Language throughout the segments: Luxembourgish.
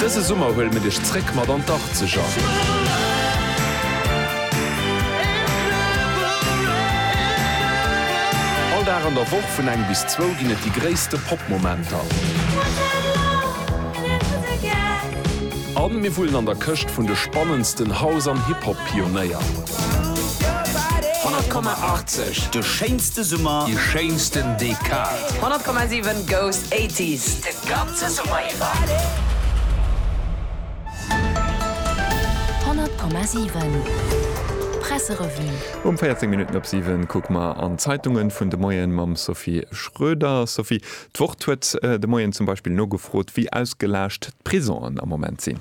Dëse Summer huele mir dech zréck mat an d'Arzeger! All Dag an der Woch vun eng bis zwou ginn et déi gréisste Pop-Momenter. A mir wullen an der Këscht vun de spannendsten House an Hip-Hop-Pionéier. 100,80, de schéinste Summer, déi schéinsten Dekad. 100,7, Goes 80s! Kapp ze Summer iwwer. 100,7 Presserevue. Um 14 Minutten op 7 kucke mer an d'Zeitungen vun de Moien mam Sophie Schroeder. Sophie, d'Wort huet de Moien zum Beispill nogefrot, wéi ausgelaascht d'Prisongen am Moment sinn.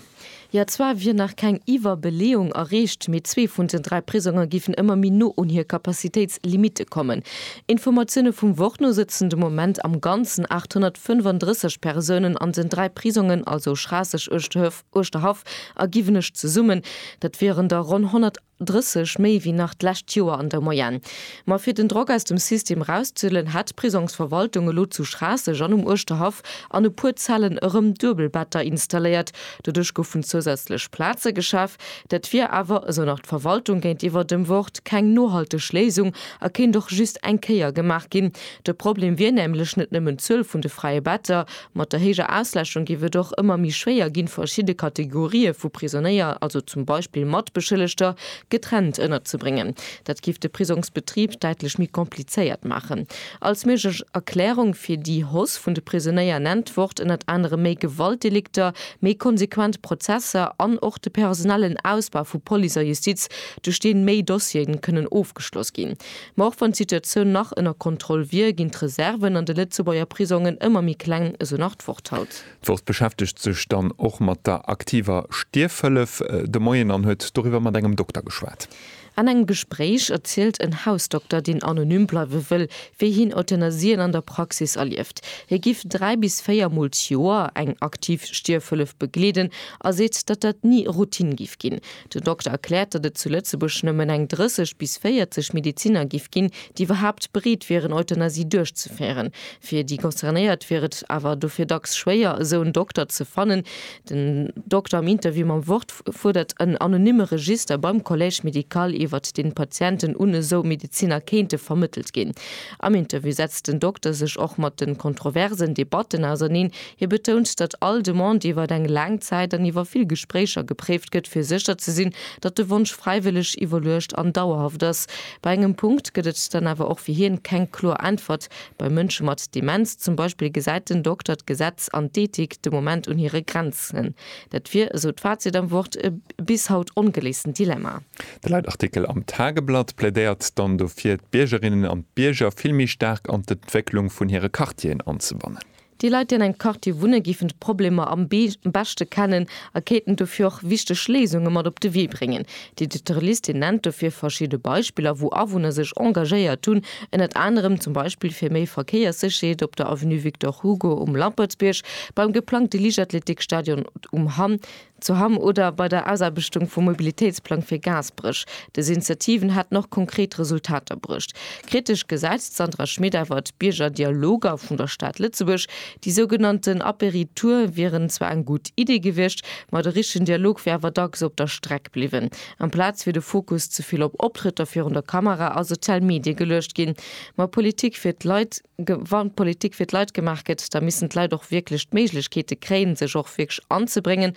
Jo, zwar wier nach keng Iwwerbeleeung erreecht, mee zwee vun den dräi Prisonge géifen ëmmer méi no un hir Capacitéitslimitte kommen. Informatioune vum Wort no sëtzen de Moment am Ganzen 835 Persounen an den dräi Prisongen, also Schraasseg, Uerschterhaff a Giwenech zesummen. Dat wieren der ronn 100. 30 méi wéi nach d'lescht Joer an der Moyenne. Ma fir den Drock aus dem System erauszehuelen, hätt d'Prisongsverwaltung elo zu Schraasseg an um Uerschterhaff an e puer Zellen erëm Duebelbetter installéiert. Doduerch goufen zousätzlech Plaze geschaf. Dat wier awer, esou nach d'Verwaltung géintiwwer dem Wort, keng nohalteg Léisung a kéint och just eng Kéier gemaach ginn. De Problem wier nämlech net nëmmen d'Zuel vun de freie Better, Mat der héijer Ausläschung géif et och ëmmer méi schwéier ginn, verschidde Kategorië vu Prisonéier, also zum Beispill Matbeschëllegter, getrennt ënnerzebréngen. Dat géif de Prisongsbetrib däitlech méi komplizéiert maachen. Als méiglech Erklärung fir déi Hausse vun de Prisonéier nennt d'Wort ënnert anerem méi Gewaltdelikter, méi konsequent Prozesser an och de personellen Ausbau vu Police a Justiz, duerch deen méi Dossieren kënnen ofgeschloss ginn. Ma och wann d'Situatioun nach ënner Kontroll wier, ginn d'Reserven an de Lëtzebuerger Prisongen ëmmer méi kleng, esou nach d'Worthaus. D'Wort beschäftegt sech dann och mat der aktiver Stierfhëllef de Moien an huet doriwwer mat engem Dokter geschwat. An engem Gespréich erzielt en Hausdokter, deen anonym bleiwe wëll, wéi hien Euthanasien an der Praxis erlieft. Hie giff dräi bis véier Mol d'Joer eng aktiv Stierfhëllef begleeden a seet, datt dat ni Routine giff ginn. Den Dokter erkläert, datt et zu Lëtzebuerg nëmmen eng 30 bis 40 Medeziner giff ginn, déi iwwerhaapt bereet wieren, Euthanasie duerchzeféieren. Fir déi Concernéiert wier et awer dofir dacks schwéier, esou en Dokter ze fannen. Den Dokter am Interview mam Wort fuerdert en anonymme Register beim Collège médical, iwwert deen d'Patienten un esou Medeziner kéinte vermëttelt ginn. Am Interview setzt den Dokter sech och mat de kontroversen Debatten auserneen, Hie betount, datt all Demande iwwer eng laang Zäit an iwwer vill Gespréicher gepréift gëtt, fir sécher ze sinn, datt de Wonsch fräiwëlleg, iwwerluecht an dauerhaft ass. Bei engem Punkt gëtt et dann awer och fir hien keng kloer Äntwert, Bei Mënsche mat Demenz zum Beispill gesäit den Dokter d'Gesetz an d'Ethik de Moment un hire Grenzen. Dat wier, esou d'Fazit am Wort, e bis haut ongeléisten Dilemma. De Leitartikel am Tageblatt plädéiert dann dofir, d'Biergerinnen an d'Bierger vill méi staark an d'Entwécklung vun hire Quartieren anzebannen. Déi Leit, déi an engem Quartier wunne géifen d'Problemer am beschte kennen a kéinten dofir och wichteg Léisunge mat op de Wee bréngen. Déi dote Liste nennt dofir verschidde Beispiller, wou Awunner sech engagéiert hunn, ënnert anerem zum Beispill fir méi Verkéierssécherheet op der Avenue Victor Hugo um Lampertsbierg, beim geplangte Liichtathletikstadion um Hamm, Zu Hamm oder bei der Ausaarbechtung vum Mobilitéitsplang fir Gaasperech. Dës Initiativen hätten och konkret Resultater bruecht. Kritesch gesäit d'Sandra Schmit awer d'Biergerdialoger vun der Stad Lëtzebuerg. Déi sougenannten Apéritoure wieren zwar eng gutt Iddi gewiescht, ma de richtegen Dialog wier awer dacks op der Streck bliwwen. Amplaz wier de Fokus ze vill op Optrëtter virun der Kamera a sozial Medie geluecht ginn. Ma Politik fir d'Leit? Wann Politik fir d'Leit gemaach gëtt, da missten d'Leit och wierklech d'Méiglechkeete kréien, sech och wierklech anzebréngen.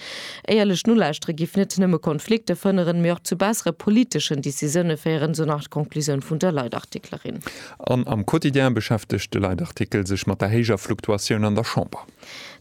Éierlech Nolauschtere giff net nëmme Konflikte fënneren, mee och zu bessere politeschen Decisioune féieren, esou nach d'Konklusioun vun der Leitartiklerin. An am Quotidien beschäftegt de Leitartikel sech mat der héijer Fluktuatioun an der Chamber.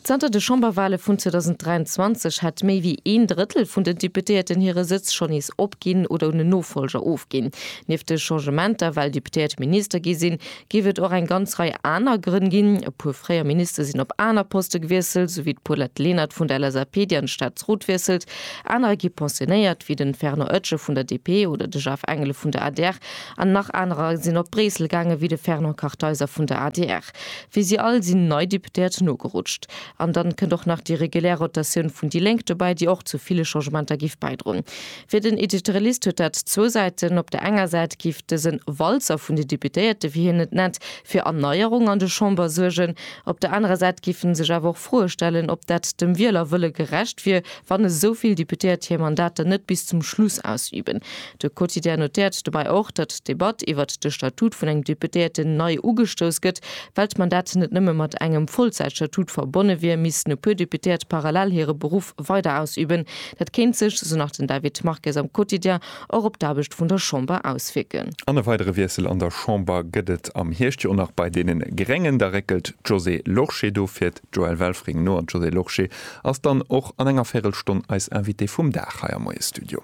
Zanter de Chamberwale vun 2023 hätt méi wéi een Drëttel vun den Deputéierten hire Sëtz schonn nees opginn oder un en Nofolger ofginn. Nieft de Changementer, well Deputéiert Minister gi sinn, géif et och eng ganz Rei aner Grënn ginn. E puer fréier Minister sinn op aner Poste gewiesselt, esou wéi d'Paulette Lenert vun der LSAP, déi an de Staatsrot wiesselt. Anerer gi pensionéiert, wéi de Fernand Oetsche vun der DP oder de Jaf Engelen vun der adr. An nach anerer sinn op Bréissel gaangen, wéi de Fernand Kartheiser vun der adr. Wéi si all sinn nei Deputéiert nogerutscht. An dann kënnt och nach déi regulär Rotatioun vun déi Lénk dobäi, déi och zu ville Changementer giff bäidroen. Fir den Editorialist huet dat zwou Säiten. Op der enger Säit giff dësen Walzer vun den Deputéierten, wéi hien et nennt, fir Erneierung an de Chamber suergen. Op der anerer Säit giff en sech awer och Froe stellen, ob dat dem Wielerwëlle gerecht wier, wann esou vill Deputéiert hir Mandater net bis zum Schluss ausüben. De Quotidien notéiert dobäi och, datt d'Debatt iwwert de Statut vun engem Deputéierten nei ugestouss gëtt. Well d'Mandat net nëmme mat engem Vollzäitstatut verbonne wier, missten e puer Deputéiert parallel hire Beruff weider ausüben. Dat kéint sech, esou nach den David Marques am Quotidien, och op d'Aarbecht vun der Chamber auswierken. An e weidere Wiessel an der Chamber gëtt et am Hierscht jo och nach bei deene Gréngen. Da réckelt d'Josée Lorsché do fir d'Joëlle Welfring no. An d'Josée Lorsché ass dann och an enger Véirelstonn eis Invitée vum Dag hei am Moie-Studio.